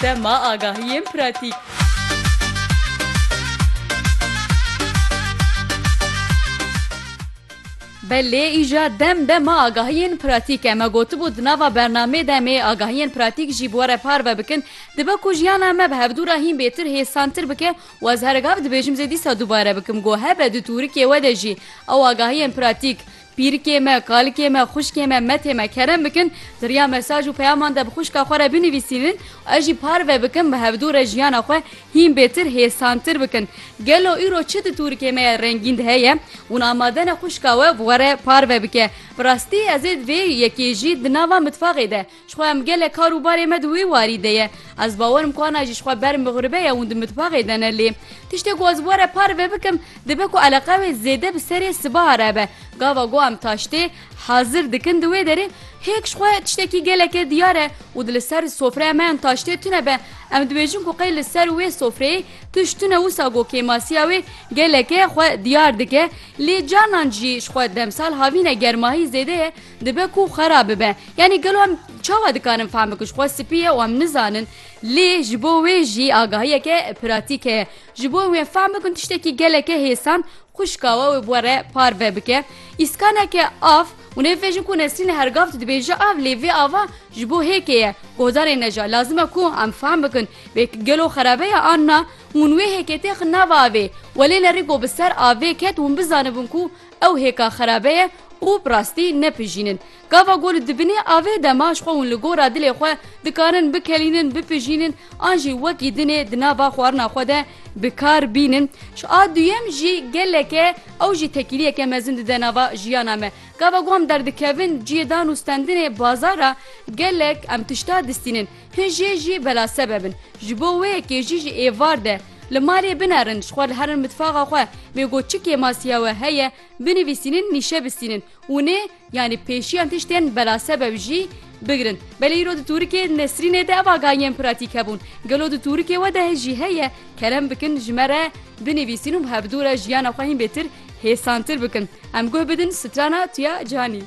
Tema agahiyên pratîk. Belê îja dem dema agahiyên pratîk e. Me gotibû di nava bernameyê demê agahiyên pratîk jî bi we re parve bikin. Dibe ku jiyana me bi hevdû re hîn bêtir hêsantir bike û ez hergav dibêjim zê dîsa dubare bikim ku hebe di tûrikê we de jî ew agahiyên pratîk, Pîrikê me, kalikê me, xwişkê me, metê me kerem bikin di riya mesaj û peyaman de bi xwişka xwe re binivîsînin û ez jî parve bikim bi hevdû re jiyana xwe hîn bêtir, hêsantir bikin. Gelo îro çi di tûrikê me ya rengîn de heye? Hûn amade ne xwişka we bi we re parve bike? Bi rastî ez ê di vê yekê jî di nava mitfaxê de Jixwe em gelek kar û barê me di wê warî de ye. Ez bawer im ku ana jî jixwe ber mixribe ye û di mitbaxê de ne lê. Tiştê ku ez were parve bikim, dibe ku eleqa wê zêde bi serê sibaha re be. Gava ku em taştê hazir dikin di wê derê, hêk jixwe tiştekî geleke diyar e û di li ser sofreya me em taştê tune be. Em dibêjin ku qey li ser wê sofreyê tişt tune wisa ku kêmasiya wê geleke xwe diyar dike. Lê carnan jî jixwe demsal havîne germahî zêde ye. Dibe ku xwe re bibe. Yanî gelo em çawa dikarin fehm bikin ji xwe spî ye û em nizanin lê ji bo wê jî agahiyeke pratîk heye. Ji bo wê fehm bikin tiştekî geleke hêsan xwişka we wê bi we re parve bike. Îskaneke av û nêvejin ku Nesrîne her gav tu dibêje av lê vê ava ji bo hêkê ye gohdarê ne jî lazim e ku em fehm bikin bê ki gelo xerebe ye an na. Hûn wê hêkê têxin nav avê welê ne rî ku bi ser avê ket hûn bizanibin ku Ew hêka xerabe ye û bi rastî ne pijîn in. Gava ku li dibinê avê de ma ji xwe hûn li gora dilê xwe dikarin bikelînin, bipijînin an jî wekî dinê di nava xwarina xwe de bi kar bînin. Ji a duyem jî geleke ew jî tekîliyeke mezin dide nava jiyana me. Gava ku em derdikevin ciyê dan û stendinê bazara gelek em tişta distînin. Hin jê jî bela sebeb in. Ji bo wê yekê jî ji êvar de li malê binerin, ji xwe li herin mitfaxa xwe wê got çi kêmasiya we heye binivîsînin nîşe bisînin û nê yanî pêşiyan tiştên bela sebeb jî bigirin. Belê îro di tûrikê Nesrînê de ev agahî yên pratîk hebûn. Gelo di tûrikê we de jî heye? Kerem bikin ji me re binivîsîn û bi hevdu re jiyana xwe hîn bêtir hêsantir bikin. Em guh bidin strana tu ya Canî.